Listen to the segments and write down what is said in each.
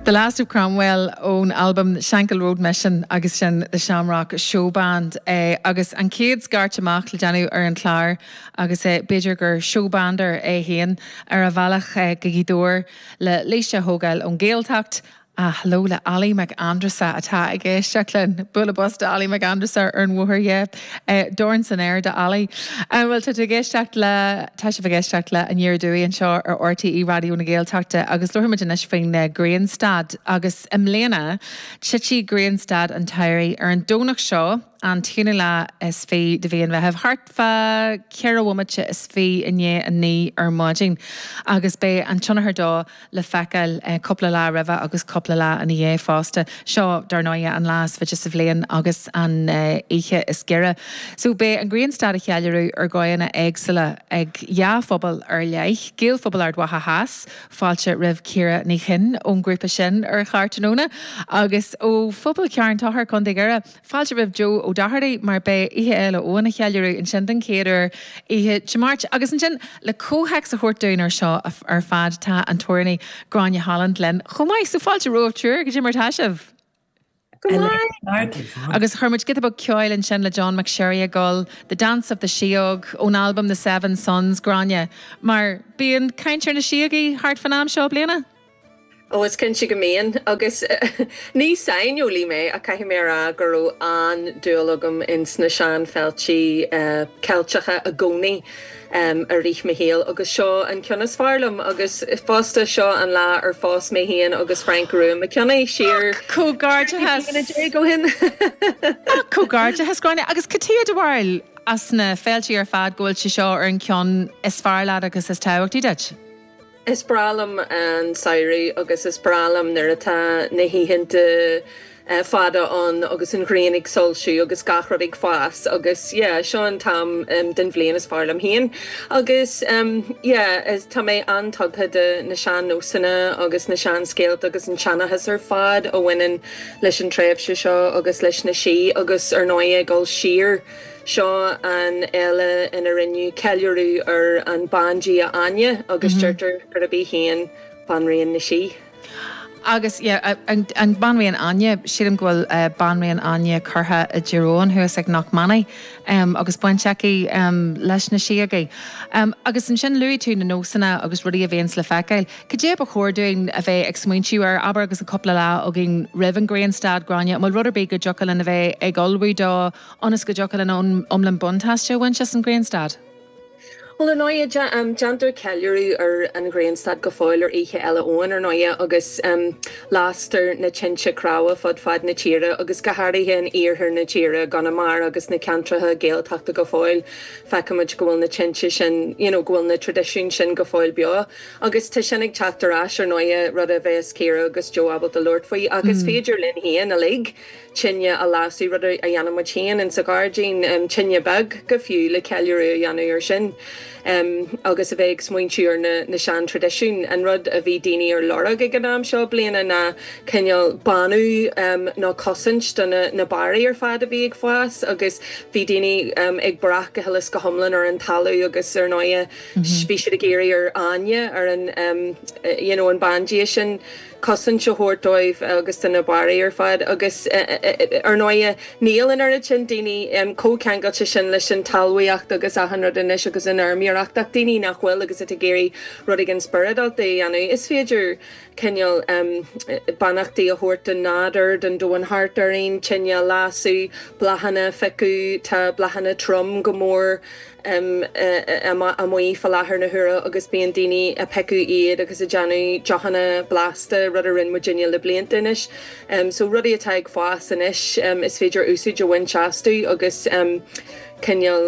The Last of Cromwell ón albam Shankill Road Mission agus sin The Shamrock Showband é agus an chéad scairt amach le déanamh ar an chlár agus b'fhéidir gur showbander é féin ar a bhealach go Gaoth Dobhair le Laoise a thógáil ón Ghaeltacht A hello le Ali Mac Andressa atá ag éisteacht linn. Bualadh bos do Ali Mac Andressa ar an bhóthar dhe. Dorn san aer do Ali. Bhuel tá tú ag éisteacht le, tá sibh ag éisteacht le An nGréin Dúigh anseo ar RTÉ Raidió na Gaeltachta agus labhair muid anois faoin Grianstad agus i mbliana titfidh Grianstad an tsamhraidh ar an Domhnach seo an t-aonú lá is fiche de mhí an Mheithimh thart Fá cheithre bhomaite is fiche i ndiaidh a naoi ar maidin agus beidh an tionchar dó le feiceáil cúpla lá roimhe agus cúpla lá ina dhiaidh fosta. Seo, dar ndóighe, an lá is faide sa bhliain agus an oíche is giorra. So, beidh an grianstad á cheiliúradh ar dhóigheanna éagsúla ag dhá phobal ar leith, Gaelphobal Ard Mhacha Theas, fáilte roimh Ciara Ní Chuinn ón ghrúpa sin ar chlár tráthnóna, agus ó phobal Charn Tóchair, Co. Dhoire, Fáilte roimh Joe Ó Dochartaigh mar beidh Oíche Fhéile Eoin á cheiliúradh ansin den chéad uair oíche Dé Máirt. Agus ansin, le comhthéacs a thabhairt dúinn ar seo ar fad, tá an t-amhránaí Gráinne Holland linn chomh maith. So fáilte romhaibh triúr, cad é mar atá sibh! Go maith! Agus chuir muid giota beag ceoil ansin le John McSherry ag gabháil, The Dance of the Síóg, ón albam The Seven Suns, Gráinne, mar bíonn caint ar na síogaí thart fán am seo bliana? Ó, is cinnte go mbíonn. Agus ní saineolaí mé, ach caithfidh mé a rá go raibh an-dúil agam ins na seanfhéilte Ceilteacha i gcónaí i rith mo shaoil, agus seo an ceann is fearr liom. Agus fosta, seo an lá ar phós mé féin agus Frainc Rua Mac Cionnaith, siar trí bliana déag ó shin. Ach comhgairdeachas, Gráinne, agus cad chuige dar leat as na féilte ar fad go bhfuil sé seo ar an ceann is fearr leat agus is tábhachtaí duit? Is breá liom an samhradh agus is breá liom nuair atá na hoícheanta fada ann agus an ghrian ag soilsiú agus gach rud ag fás agus yeah seo an t-am den bhliain is fearr liom féin agus yeah tá mé an-tugtha do na sean-nósanna agus na seanscéalta agus an seanchas ar fad a bhaineann leis an tréimhse seo agus leis na sí agus ar ndóigh ag dul siar Seo an fhéile ina rinneadh ceiliúradh ar an bandia Áine agus deirtear gurb í féin Banríon na Sí. Agus yeah, an Banríon Áine, sílim go bhfuil Banríon Áine curtha i dTír Eoghain thuas ag Knockmany agus baint aici leis na síogaí. Agus ansin luaigh tú na nósanna agus rudaí a bhíonns le feiceáil. Cad é a ba chóir dúinn a bheith ag smaointiú air, abair agus an cúpla lá againn roimh an Ghrianstad, Gráinne, an bhfuil rud ar bith go dtiocfadh linn a bheith ag ullmhú dó, ionas go dtiocfadh linn iomlán buntáiste a bhaint as an ghrianstad. Bhuel, ar ndóigh, déantar ceiliúradh ar an ghrianstad go fóill ar Oíche Fhéile Eoin, ar ndóigh, agus lastar na tinte cnámha fud fad na tíre, agus go háirithe in iarthar na tíre, i gConamara agus sna ceantracha Gaeltachta go fóill, feicimid go bhfuil na tinte sin, you know, go bhfuil na tradisiúin sin go fóill beo. Agus tá sin ag teacht ar ais, ar ndóigh, rud a bheas Ciara agus Joe ábalta labhairt faoi, ach is féidir linn féin uilig, tine a lasadh, rud a dhéanann muid féin insa ghairdín, tine bheag go fiú, le ceiliúradh a dhéanamh ar sin agus a bheith ag smaointiú ar na seantraidisiúin. An rud a bhí daoine ar lorg ag an am seo bliana ná cineál bánú nó cosaint do na barraí ar fad a bhí ag fás agus bhí daoine ag brath go huile is go hiomlán ar an talamh agus ar ndóighe bhí siad ag iarraidh ar Áine ar an you know an bandia sin. cosaint a thabhairt dóibh agus do na barraí ar fad agus, ar ndóighe, níl an oiread sin daoine chomh ceangailte sin leis an talmhaíocht agus achan rud anois agus an fheirmeoireacht ach daoine nach bhfuil agus atá ag iarraidh rud éigin spioradálta a dhéanamh, is féidir cineál beannachtaí a thabhairt don nádúr, don domhan thart orainn, tine a lasadh, bláthanna a phiocadh, tá bláthanna troim go mór. amuigh fá láthair na huaire agus bíonn daoine a' piocadh iad agus a' déanamh deochanna blasta, rud a rinn muidinne le blianta anois. So rudaí atá ag fás anois is féidir úsáid a bhaint astu agus cineál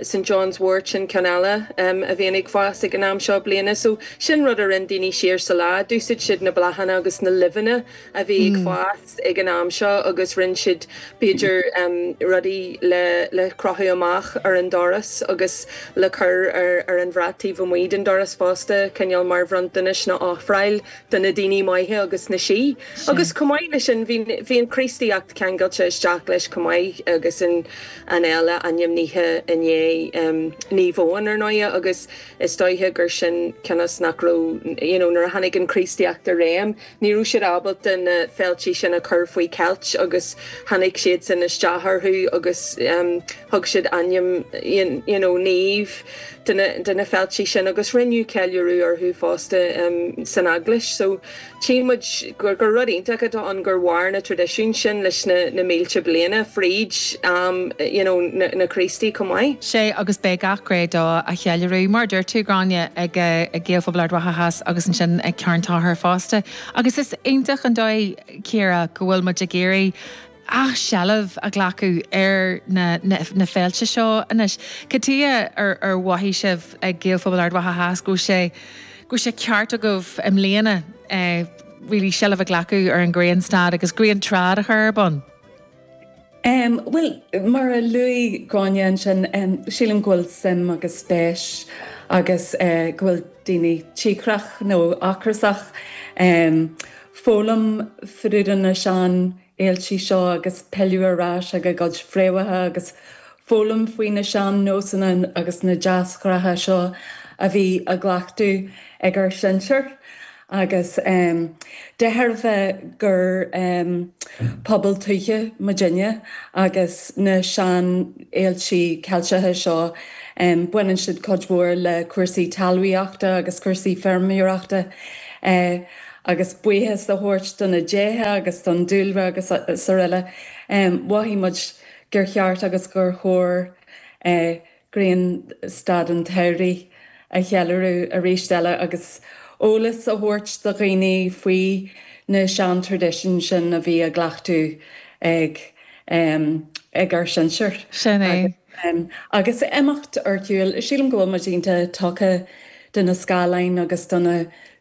St John's wort sin ceann eile a bhíonn ag fás ag an am seo bliana. So sin rud a rinn daoine siar sa lá, d'úsáid siad na bláthanna agus na luibheanna a bhí ag fás. ag an am seo agus rinne siad b'fhéidir rudaí le le crochadh amach ar an doras agus le cur ar ar an bhrat taobh amuigh den doras fosta cineál mar bhronntanais nó ofráil do na daoine maithe agus na sí agus chomh maith leis sin bhí bhí an Chríostaíocht ceangailte isteach leis chomh maith agus an an fhéile ainmnithe i ndiaidh Naomh Eoin ar ndóighe agus is dóiche gur sin cionn is nach raibh you know nuair a tháinig an Chríostaíocht i réim Ní raibh siad ábalta na féiltí sin a chur faoi cheilt agus tháinig siadsan isteach orthu agus thug siad ainm you know Naomh do na féiltí sin agus rinneadh ceiliúradh orthu fosta san eaglais. So tchím muid gur rud iontach atá ann gur mhair na traidisiúin sin leis na mílte bliana fríd am you know na Críostaí chomh maith. sé agus beidh gach gné dó á cheiliúradh, mar a deir tú, Gráinne, ag Gaelphobal Ard Mhacha Theas agus ansin ag Carn Tóchair fosta. Agus is iontach an dóigh, Ciara, go bhfuil muid ag iarraidh athsheilbh a ghlacadh ar na féilte seo anois. Cad tuige ar mhothaigh sibh ag Gaelphobal Ard Mhacha Theas go bhfuil sé, go bhfuil sé ceart agaibh i mbliana really seilbh a ghlacadh ar an ghrianstad agus griantrad a chur ar bun? Bhuel, mar a luaigh Gráinne ansin, sílim go bhfuil suim agus spéis agus go bhfuil daoine cíocrach, nó ocrasach, foghlaim fá dtaobh de na sean fhéiltí seo agus pilleadh ar ais ag a gcuid fréamhacha agus foghlaim faoi na sean nósanna agus na deasghnátha seo a bhí á gcleachtadh ag ár sinsear. Agus de thairbhe gur pobal tuaithe muidinne, agus na sean fhéilte Ceilteacha seo, baineann siad cuid mhór le cúrsaí talmhaíochta agus cúrsaí feirmeoireachta. Agus buíochas a thabhairt do na déithe agus don dúlra agus araile, mhothaigh muid gur cheart agus gur chóir grianstad an tsamhraidh a cheiliúradh arís eile agus eolas a thabhairt do dhaoine faoi na seantraidisiúin sin a bhí á gcleachtadh ag ár sinsir. Agus imeacht ar shiúl, sílim go bhfuil muid iontach tugtha do na scáileáin agus do na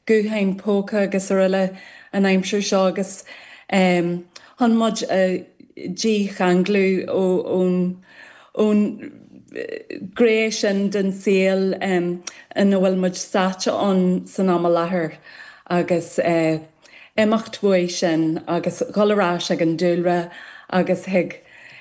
gutháin póca agus araile an aimsir seo agus chun muid a dícheanglú ón ón ngné sin den saol ina bhfuil muid sáite ann san am i láthair, agus imeacht uaidh sin agus dhul ar ais ag an dúlra agus chuig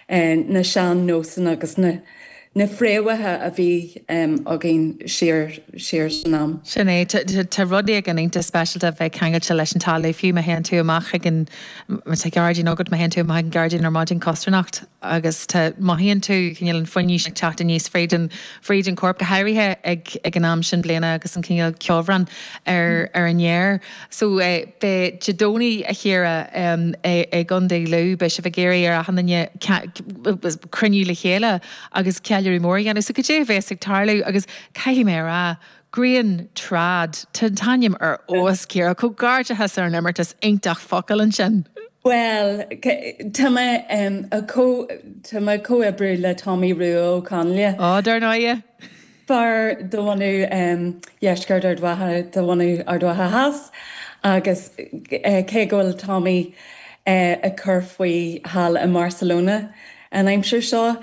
na sean-nósanna agus na fréamhacha a bhí againn siar san am. Sin é. Tá rud éigin iontach speisialta a bheith ceangailte leis an talamh, fiú má théann tú amach chuig an, má tá gairdín agat, má théann tú amach ag an ghairdín ar maidin, costarnocht, agus tá, mothaíonn tú cineál an fuinnimh ag teacht aníos fríd an, fríd an chorp, go háirithe ag, ag an am seo bliana agus an cineál ceobhrán ar, ar an fhéar. So eh, beidh, Dé Domhnaigh a Chiara, em, i, i gCondae Lú, beidh sibh ag iarraidh ar achan duine cea, cruinniú le chéile agus ceiliúradh mór a dhéanamh. So cad é a bheas ag tarlú agus caithfidh mé a rá Griantrad, tá an t-ainm ar fheabhas, Ciara. Comhghairdeachas ar an imeartas iontach focal ansin! Bhuel, tá mé ag comhoibriú le Tommy Rua Ó Conghaile. Ó, dar ndóighe! Fear de bhunadh dheisceart Ard Mhacha, de bhunadh Ard Mhacha Theas, agus cé go bhfuil Tommy ag cur faoi thall i mBarcelona an aimsir seo,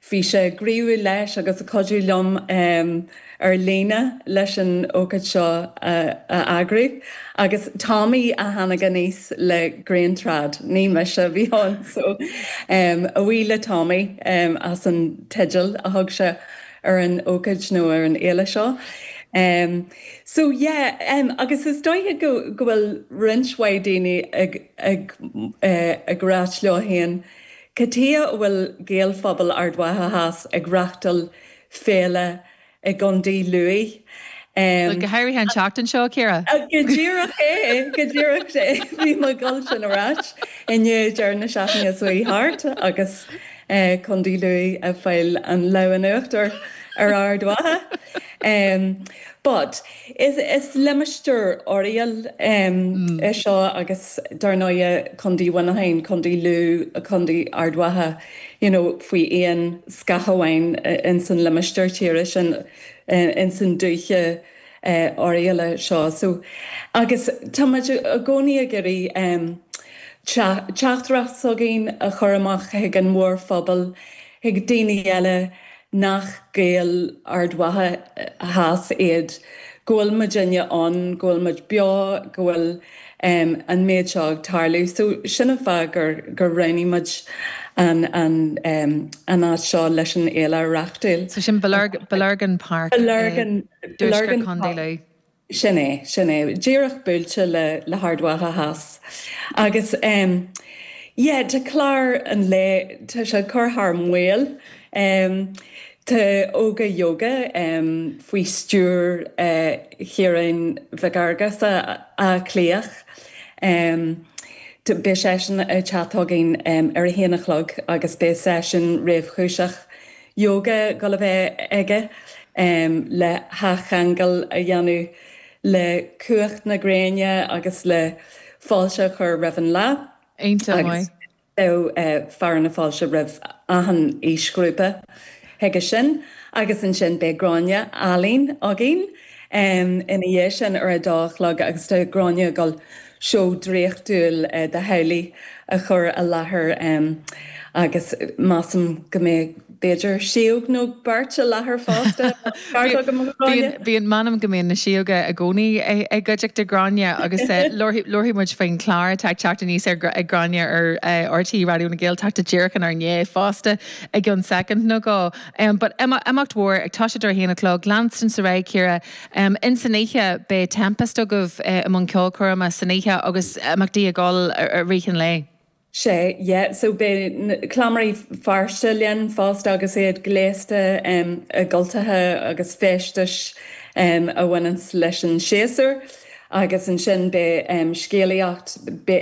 Bhí sé gníomhach leis agus ag cuidiú liom ar líne leis an ócáid seo a eagrú. Agus Tommy a tháinig aníos le Grian Trad, ní mise, bhí ann so. A bhuí le Tommy as an teideal a thug sé ar an ócáid nó ar an fhéile seo. So yeah agus is dóiche go bhfuil roinnt mhaith daoine ag ag rá leofa féin Cad chuige a bhfuil Gaelphobal Ard Mhacha Theas ag reachtáil féile i gContae Lú. Bhuel, go háirithe an tseachtain seo, Ciara! Go díreach é, go díreach é. Ní maith dul siar ar ais inniu deireadh na seachtaine s'chuaigh thart agus Contae Lú ag fáil an lámh in uachtar ar Ard Mhacha. But. Is limistéar Oirialla é seo agus dar ndóigh Condaí Mhuineacháin, Condaí Lú, Condaí Ard Mhacha you know faoi aon scáth amháin ins an limistéar tíre sin, ins an dúiche Oirialla seo. So agus tá muid i gcónaí ag iarraidh teachtaireacht s'againn a chur amach chuig an mhórphobal, Chuig daoine eile, nach Gaeil Ard Mhacha Theas iad, go bhfuil muidinne ann, go bhfuil muid beo, go bhfuil an méid seo ag tarlú. So sin an fáth gur roghnaigh muid an áit seo leis an fhéile a reáchtáil. So sin Bellurgan Park i dtuaisceart Condae Lú. Sin é, sin é. Díreach buailte le le hArd Mhacha Theas. Agus em. yeah, tá clár an lae, tá sé ag cur thar maoil. Em. tá Óga Yoga em. faoi stiúir eh Chiaráin Mhic Fhearghusa, Áth Cliathach. Em. tá, beidh seisean ag teacht chugainn em ar a haon a chlog agus beidh seisiún réchúiseach Ióga ag dul a bheith aige le hathcheangal a dhéanamh le cumhacht na gréine agus le fáilte a chur roimh an lá, agus beidh fearadh na fáilte roimh achan aoisghrúpa chuige sin, agus ansin beidh Gráinne Holland againn. Ina dhiaidh sin, ar a dó a chlog, agus tá Gráinne ag dul, seó draíochtúil de theaghlaigh a chur i láthair agus measaim go mbeidh b'fhéidir síóg nó beirt i láthair fosta, tá an ceart agam a Ghráinne? Bíonn, m'anam go mbíonn na síóga i gcónaí i gcuideachta Ghráinne agus labharfaidh muid faoin chlár atá ag teacht aníos ag Gráinne ar RTÉ Raidió na Gaeltachta díreach inár ndiaidh fosta i gceann soicind nó dhó. Em, but em imeacht mhór atá siad ar a haon a chlog, leanann sé ar aghaidh, Ciara, em in san oíche beidh Tempest agaibh eh i mbun ceolchoirme san oíche agus imeachtaí ag dul ar i rith an lae. Sé, yeah, so beidh na, Cleamairí Feirste linn fosta agus iad gléasta em i gcultaithe agus feisteas em a bhaineas leis an séasúr agus ansin beidh em scéalaíocht,